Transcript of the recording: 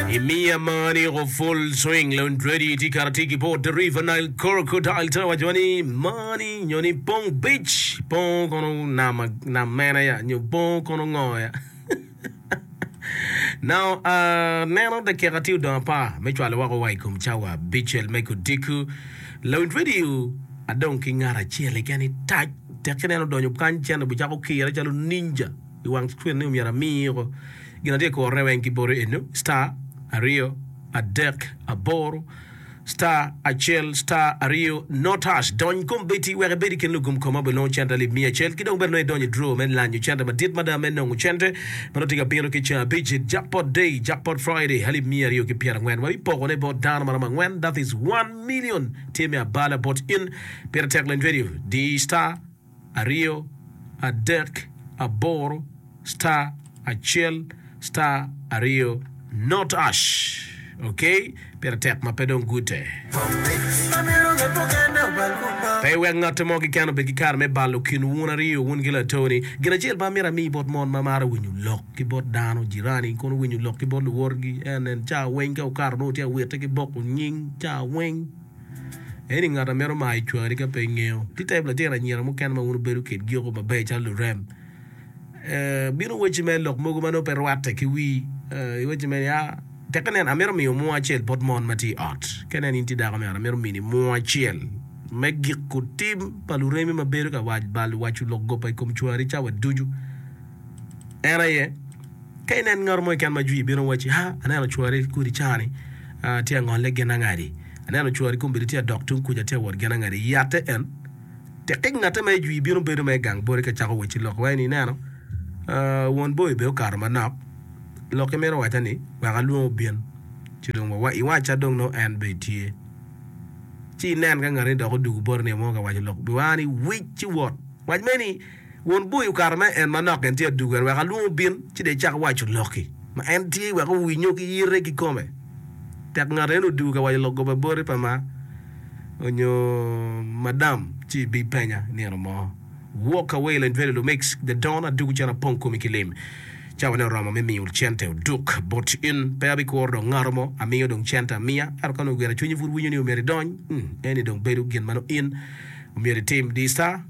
I miya mani ko Full Swing, Leon Drady tye kato atir ki bot The River Nile Crocodile te waco ni mani nyo ni pong bic, pong kono nam, nam mena ya nyo pong kono ngo ya. Now, uh, neno dakika tye odong apar me cwalo wako wa i kom cawa bicel me kudiko. Leon Drady adong ki ngat acel keken i tac tek ineno donyo kany cen obicako kire calo ninja. i wang cwin ni myero amiko gin atye ka kuro ne weng ki boti eno star aryo adek aboro star acel star aryo no touch dony kom beti wek ibedi kin lugum kom ma bilongo cente alip miya acel ki dong bene nongo idonyo draw me lanyo cente madit mada me nongo cente ma nongo tye ka bino ki ceng abicit jackpot day jackpot Friday alip miya aryo ki pyera ngwen ma bipoko ne bot dano maromo angwen that is one million tye me abala bot in pire tek lend radio di star aryo adek aboro star acel star aryo not ash ok pire tek ma pe dong gute pe iwek ngatte mo keken obed ki kare me balo kin wun aryo wun ki latoni gin acel ma amito ami bot mon ma maro winyo lok ki bot dano jirani kono winyo lok ki bot luwotgi en nen cawa weng ka okato nongo tye ka witte ki boko nying cawa weng Eni ngat a mito mayo cwari ka pe ingeyo. Ti type litino anyira mukene ma wun wubedo kitgi oko maber calo lurem. Eh, bino wacci mere lok mogo ma nongo pe rwatte ki wii. Eh, iwacci mere ya, tekke nen, amito miyo munu acel bot mon ma tye i ot. Ka nen in tye dako meno, amito mini munu acel. Me giko, tim pa luremi ma bedo ka bal waco lok goba i kom cwari cawa ducu. En aye, Ka inen ngat mo keken ma jwi ibino wacci, 'Ha, aneno cwari kodi cani tye angolle gin angadi, aneno cwari kombeddi tye adok tung kuca tye awot gin angadi i yatte en. Tikkik ngatte ma i jwi bino bedo ma i gang boti ka cako wacci lok wai ni, 'Ineno, won boi bene okato manok, lok imito waca ni, wek alwonge obin ci dong wawa, iwacca dong nongo en bene tye. Ci inen ka ngatte ni dok odugu boti nio mo ka waco lok boi ni, 'Wic ci wot! Wac mere ni, Won boi okato ma en manok gin tye aduger wek alwong obin ci dong ecak waco lokki ma en tye wek owinyo ki yite kikome. Tek ngat eni odugo ka waco lok goba boti pa ma onyo madam ci ibi penya nino mo. Walk away Lane Valley Lumix, The Don Adugo cen apong komi ki lim. Cawa ne oromo me miyo cente oduk bot in. Pe abi kuro dong ngato mo amiyo dong cente amiya ento ka nongo gira cwinyi pud winyo ni omyero idony, eni dong bedo gin ma nongo in omyero itim. Di sa.